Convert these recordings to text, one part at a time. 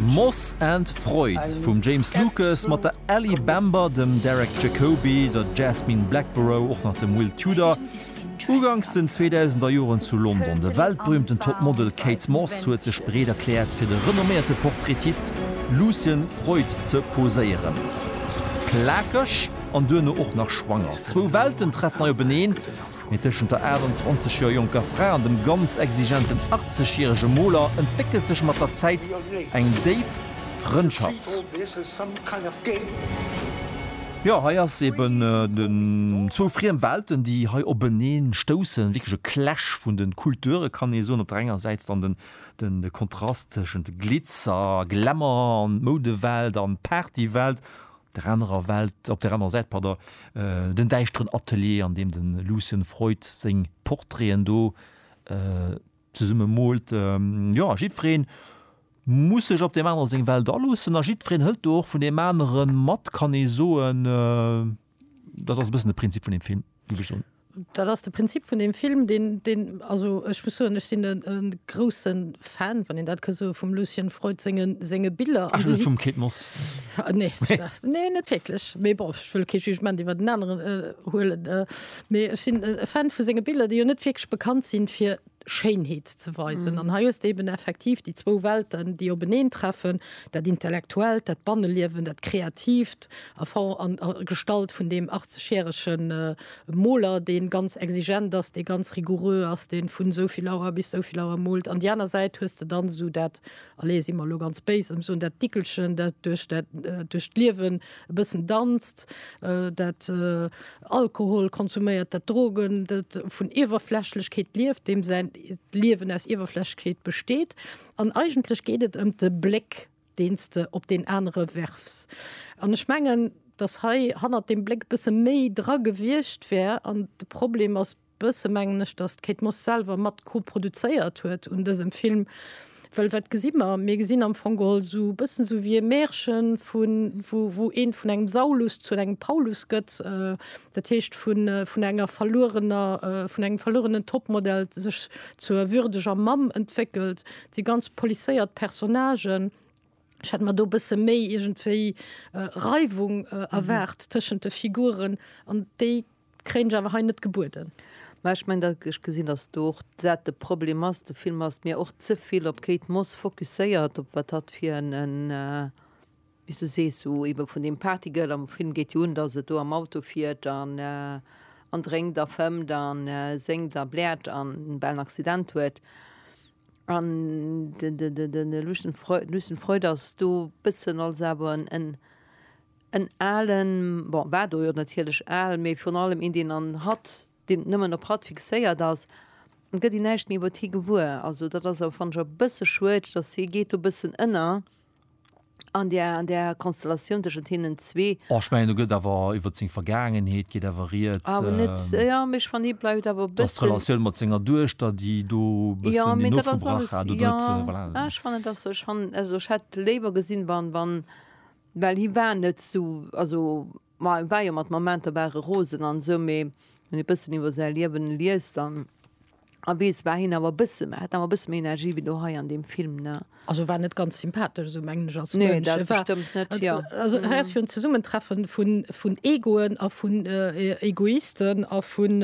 Moss and Freud vum James Lucas mat der Ellie Bamber, dem Derek Jacobi, der Jasmine Blackborough, och nach dem Will Tudor. Uganks den 2000er Joren zu London, de weltberüümten Topmodel Kate Moss huet sech bereet erkläert fir de renomméierte Portraitist Lucian Freud ze poséieren. Plakeg an duerno och nach schwanger, zwou Welten treffen hei openeen, Mee tëschent der 28 Joer jonker Fra an dem ganz exigenten 80 järege Moler entwéckelt sech mat der Zäit eng déif Frëndschaft. Jo, hei ass eben zwou friem Welten, déi hei openeen stoussen. Wierklech e Clash vun den Kulturen, kann ee soen. Op der enger Säit dann den Kontrast tëschent Glitzer, Glamour an Moudewelt an Partywelt. der anerer Welt, op der anerer Säit, pardon, den däischteren Atelier, an deem de Lucien Freud seng Portraiten do zesumme moolt. Jo, jiddweree muss sech op deem anere seng Welt aloossen a jiddwereen hëlt do och vun deem anere mat, kann ee soen. Dat ass e bëssen de Prinzip vun deem Film, géif ech soen. Dat ass de Prinzip vun deem Film, deen, deen, also ech muss soen, ech sinn e grousse Fan, wann een dat ka soen, vum Lucien Freud senge, senge Biller. Ech si vum Kate Moss. Nee, nee, net wierklech. Mee bon, ech wëll kee Jugement iwwer en aneren huelen. Mee ech sinn e Fan vu senge Biller, déi jo net wierklech bekannt sinn, fir Schéinheet ze weisen. An hei hues de eben effektiv déi zwou Welten, déi openeen treffen, dat Intellektuellt, dat Banneliewen, dat Kreativt a Form an Gestalt vun deem 80 järege Moler, dee ganz exigent ass, dee ganz rigoureux ass, dee vun esou vill Auer bis esou vill Auer moolt. An déi aner Säit hues de dann esou dat, allez, si mer elo ganz béis, ëm soen, dat Dickelchen, dat duerch dat, duerch d'Liewen, e bëssen danzt, dat Alkohol konsuméiert, dat Drogen, dat vun Iwwerflächlechkeet lieft, deem säin Liewen aus Iwwerflächlechkeet besteet. An eigentlech geet et ëm de Bléck, deen s de op deen anere werfs. An ech mengen, datt hei hannert deem Bléck e bësse méi dra gewiescht wär an de Problem ass, Bësse mengen ech, datt d'Kate Moss selwer mat koproduzéiert huet un dësem Film, well wat gesi mer? Mir gesinn am Fong geholl esou e bëssen esou wéi e Märchen, vun, wou, wou een vun engem Saulus zu engem Paulus gëtt, dat heescht vun, vun enger verluerener, vun engem verluerenen Topmodel sech zur würdeger Mamm entwéckelt. Et si ganz policéiert Personnagen. Ech hätt mer do e bësse méi iergendwéi Reiwung erwaart tëschent de Figuren an déi Kréien ech awer hei net gebueden. Mä ech mengen, datt ech gesinn, datt do och dat de Problem ass, de Film ass mir och ze vill op Kate Moss fokusséiert, op wat hatt fir en, wéi s du sees, so ebe vun deem Partygirl, am Film geet jo un, datt et do am Auto fiert an an drénkt a fëmmt an séngt a bläert an en bellen Accident huet. An de Lucian Freud ass do e bëssen als awer en, En alen, bon, war do jo natierlech al, mee virun allem een, deen an hatt, deen nëmmen op hatt fixéiert ass, gëtt een näischt méi iwwert hie gewuer. Also dat ass awer, fannen ech, e bësse schued, dass hie geet do e bëssen ënner an där, an där Konstellatioun tëschent hinnen zwee. Oh, ech mengen, do gëtt awer iwwert seng Vergaangenheet geet awer rieds. Awer net, jo, mee ech fannen, hie bleift awer e bëssen. Dass d'Relatioun mat senger Duechter, déi do e bëssen deen ofgebrach hat oder et, voilà. Jo, mee dat ass alles, jo, ah, ech fannen, dass, ech fannen, also ech hätt léiwer gesinn, wann, wann, Well hie war net esou, also ma e war jo mat Momenter war e rosen an esou, mee wann ee e bëssen iwwer säi Liewen liest an a weess, war hien awer e bësse hat en awer e bësse méi Energie wéi do hei an deem Film, ne? Also e war net ganz sympathesch esou, mengen ech, als Mënsch. Nee, dat bestëmmt net, jo. Also hei ass jo en Zesummentreffen vun, vun Egoen a vun Egoisten a vun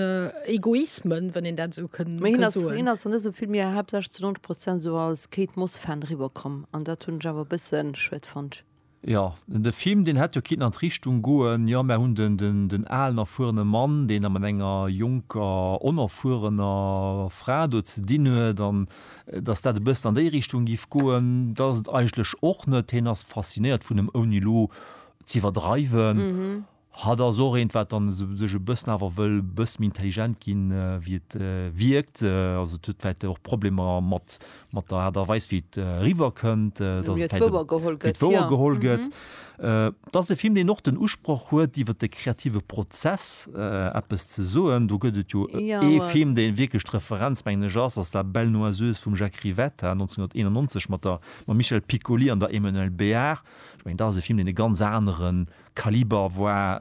Egoismen, wann een dat esou kënn, kënn soen. Mee hien ass, hien ass an dësem Film jo haaptsächlech zu 90 Prozent esou als Kate Moss Fan eriwwer komm an dat hunn ech awer e bëssen schued fonnt. Jo de Film deen hätt jo kinnten an d'Richtung goen, jo mär hunn den den den alen erfuerene Mann deen da mat enger jonker onerfuerener Fra do ze dinn huet an dass dat e bëssen an déi Richtung giff goen, dat ass et eigentlech och net, hien ass faszinéiert vun em ouni lo z'iwwerdreiwen. Hatt ass och eent, wat dann esou sech e bëssen awer wëll e bësse méi intelligent ginn, wéi et wierkt. Also et huet vläicht och Problemer mat, mat der Aart a Weis, wéi et eriwwer kënnt, dass et vläicht, wéi et wouer geholl gëtt. Et ass e Film, deen och den Usproch huet, iwwer de kreative Prozess eppes ze soen. Do gëtt et jo ee Film, dee wierklech d'Referenz, mengen ech, ass, ass La Belle Noiseuse vum Jacques Rivetta, 1991, mat der, mam Michel Piccoli an der Emmanuelle Béart. Ech mengen, dat ass e Film, deen e ganz aneren Kaliber war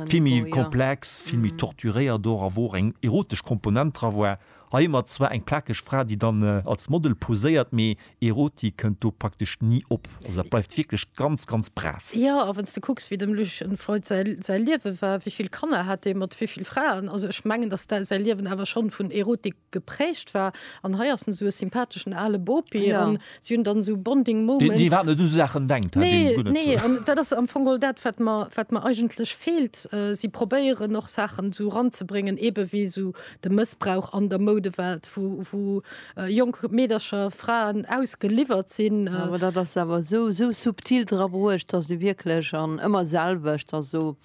vill méi komplex, vill méi torturéiert och a wou och eng erotesch Komponent dra war. Hei hu mer zwar eng plakeg Fra, déi dann als Model poséiert, mee Erotik kënnt do praktesch ni op. Also dat bleift wierklech ganz, ganz brav. Jo, a wann s de kucks, wéi dem Lucian Freud säi Liewe war, wéi vill Kanner hat dee mat wéi vill Fraen? Also ech mengen, datt säi Liewen awer schonn vun Erotik geprägt war an hei ass en sou e sympatheschen ale Bopi ja. an si hunn dann sou Bonding Moment. Déi wat net u Saachen denkt. Nee, nee an dat ass am Fong all dat wat mer wat mer eigentlech feelt. Äh, si probéieren och Saachen sou ranzebréngen, ebe wéi sou de Mëssbrauch an der Moudewelt, wou wou äh, jonk Meedercher, Fraen ausgeliwwert sinn. Äh. Awer dat ass awer sou sou subtil dra bruecht, datt se wierklech an ëmmer selwecht, datt sou.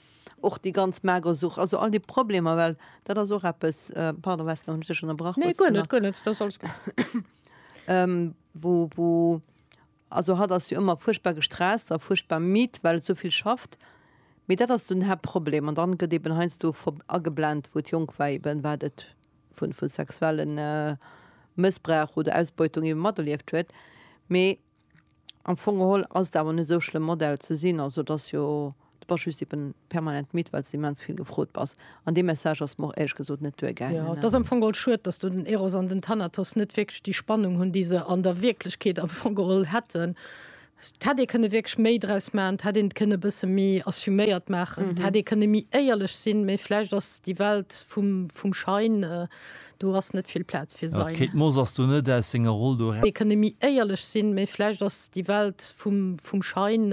Och déi ganz mager Such, also all déi Problemer, well dat ass och eppes, pardon Wessler, hunn ech dech ënnerbrach? Nee, guer net, guer net, dat ass alles gutt. Wou, wou, also hatt ass jo ëmmer fuerchtbar gestresst a fuerchtbar midd, well et esou vill schafft. Mee dat ass den Haaptproblem an dann gëtt eben heiansdo ageblent, wou d'Jongwäi eben, wat et vu sexuelle Mëssbrauch oder Ausbeutung eben materlieft huet. Mee Am Fong geholl ass et awer net esou schlëmm Model ze sinn, also et ass jo, du bass just eben permanent midd, well s de immens vill gefrot bass. An dee Message ass mer och éierlech gesot net duergaangen. Jo, et ass am Fong geholl schued, dass do den Eros an den Thanatos net wierklech déi Spannung hunn, déi se an der Wierklechkeet am Fong geholl hätten. Et hätt ee kënne wierklech méi draus maachen, et hätt een et kënne e bësse méi assuméiert maachen, et hätt ee kënne méi éierlech sinn, mee vläicht ass déi Welt vum Schein. Do ass net vill Plaz fir sein. D'Kate Moss ass do net aus senger Roll do eraus. Dee kënne méi éierlech sinn, mee vläicht ass déi Welt vum Schein